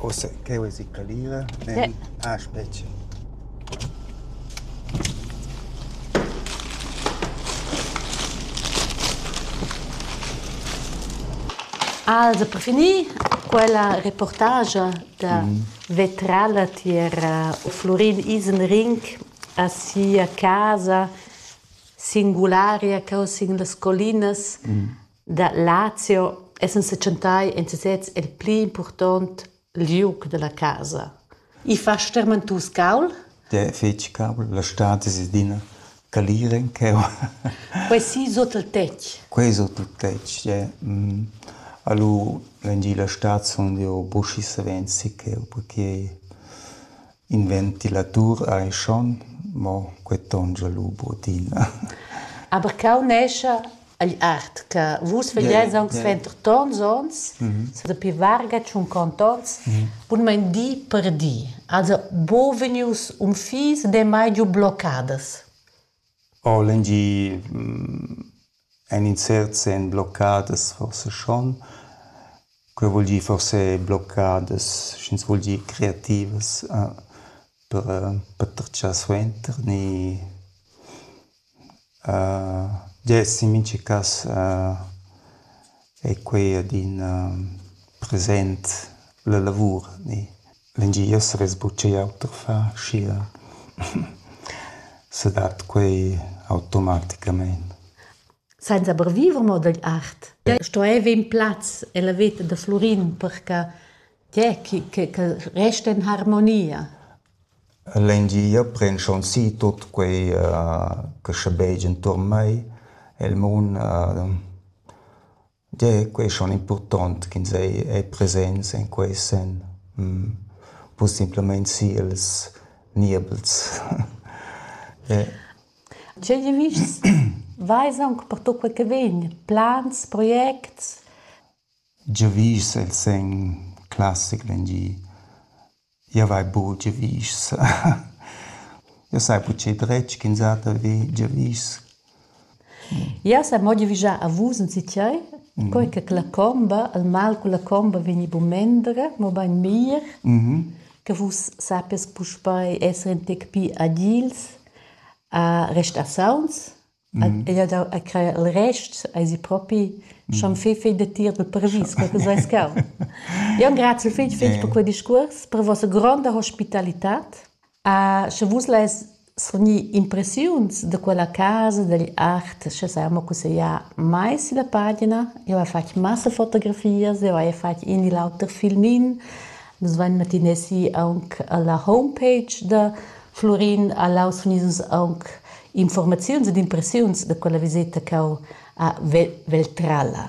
Ussa ch'jeu esi calira, nel, ah spetga! Also per finir quella reportagia da vetrala tier Flurin Isenring a sia casa singularia cheu sin las collinas Da Lazio essan setschentai en sesez el pli impurtont liug dalla casa. I fa stermentus caul? De fetg caul, la stad es adina calir en cheu. Quei si sut il tetg? Quei sut il tetg, yeah. Mm. Alu, l'engi la stad sun jeu buschi savens si cheu, perché In ventilatur ei schon, mo quei tongia lu buc'adina. Aber cau nescha agl art che vus vegliais aunc suenter tons onns, sa dapi varga tschunquont onns, bunmein di per di. Also buca vegnius unfis, damai giu bloccadas. Ho lengier en insert sen bloccadas forsa schon. Quei vul dir forse bloccadas, sch'ins vul dir creativas per per tratschar suenter ni dess in mincha cass ei quei adina present la lavur ni. L'engier savess buc igl auter far, schia sedat quei automaticamein. Senza per viver mo dagl art. Stueva in plaz ella veta da Flurin per che tge che che che resta in harmonia. L'engier pren schon si tut quei che sche beig enturn mei. El mun Gie, quei ei schon impurtont ch'ins ei ei presents en quei senn, buca simplamein siels niebels. Tgei vischs veis aunc pertucc quei che vegn? Plans, projects? Giavisch el segn classic vegn gie. Jau hai buc giavischs. Jau sai buc dretg ch'insatge vi giavisch. Jau sai mo giavischar a vus enzitgei, quei che la comba, il mal cun la comba vegni buc mendra, mobein mir, che vus sappies puspei esser in tec pli agils, a restar sauns Ella dau a crer il rest eisi propi schon fei fei datier dal paravis quei che seis cau. Io engrazio fitg fitg per quel discurs, per vossa gronda hospitalitad. A sche vus lais srgnir impressiuns da quella casa, dagl art, sche sai mo cussegliar mai sulla pagina. Io hai fatg massa fotografias, io hai fatg in e l'auter filmin. Nus vain matinè si aunc alla homepage da Flurin a Laus fun ius aunc infuormaziuns ed impressiuns da quella viseta ch'eu ha vel vel trala.